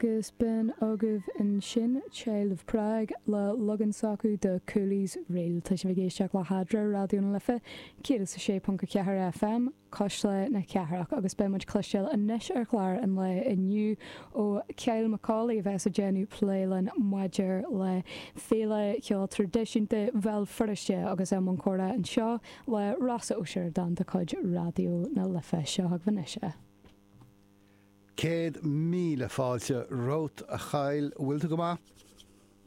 agus bhí agaibh ansin Child of Prague le leagan s'acu de Cooley's Reel. Tá sibh ag éisteacht le hEadra, Raidió na Life 106.4 FM, cuisle na cathrach, agus beidh muid ag cloisteáil anois ar chlár an lae inniu ó Kyle Macaulay a bheas ag déanamh plé linn maidir le Féile Cheoil Traidisiúnta Bhéal Feirste agus i mbun comhrá anseo le Rossa Ó Sioradáin de chuid Raidió na Life. Seo chugaibh anois é. Céad míle fáilte romhat, a Kyle. An bhfuil tú go maith?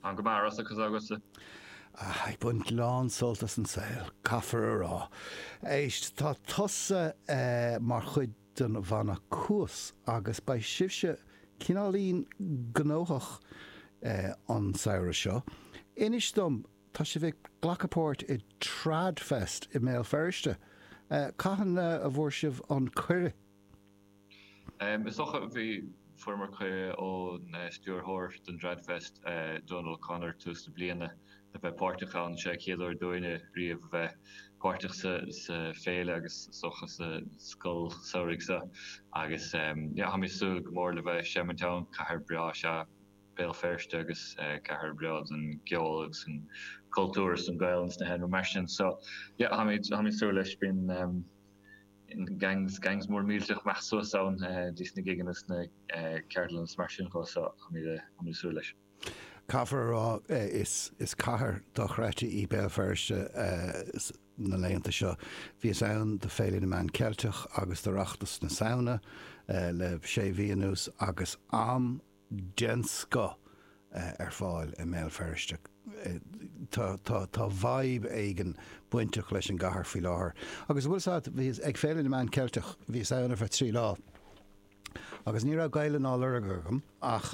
Ana-mhaith, Rossa, cad tá agatsa? Ah, ag baint lán sult as an saol, caithfear a rá. Éist, tá tusa mar chuid den bhanna Cuas agus beidh sibhse cineáilín gnóthach an samhradh seo. Inis dom, tá sibh ag glacadh páirt i Trad Fest i mBéal Feirste? Cathain a bhfuair sibh an cuireadh? Is dócha go bhfuaireamar cuireadh ón stiúrthóir den Tradfest, Donal O'Connor, tús na bliana, a bheith páirteach ann. Seo é chéad uair dúinne riamh a bheith páirteach sa féile agus is dócha sa scoil samhraidh seo agus táim ag súil go mór le bheith ag seimint ann. Cathair bhreá is ea Béal Feirste agus cathair bhreá don gceol agus an cultúr is don Ghaelainn is na hÉireann mar sin. So táim ag súil leis. Gangs, gangs mór millteach ag dul suas ann dtí sna gigeanna sna ceardlanna is mar sin de so táimid ag súil leis. Caithfear a rá is cathair dochreidte í Béal Feirste na laethanta seo. Bhíos ann do Féile na Meán Ceilteach agus d'Oireachtas na Samhna le sé mhí anuas agus am. den scoth ar fáil i mBéal Feirste. Tá tá vibe éigin bainteach leis an gcathair faoi láthair. Agus bhfuil 's a't, bhíos ag Féile na Meán Ceilteach, bhíos ann ar feadh trí lá agus ní raibh Gaeilge á lorg agam ach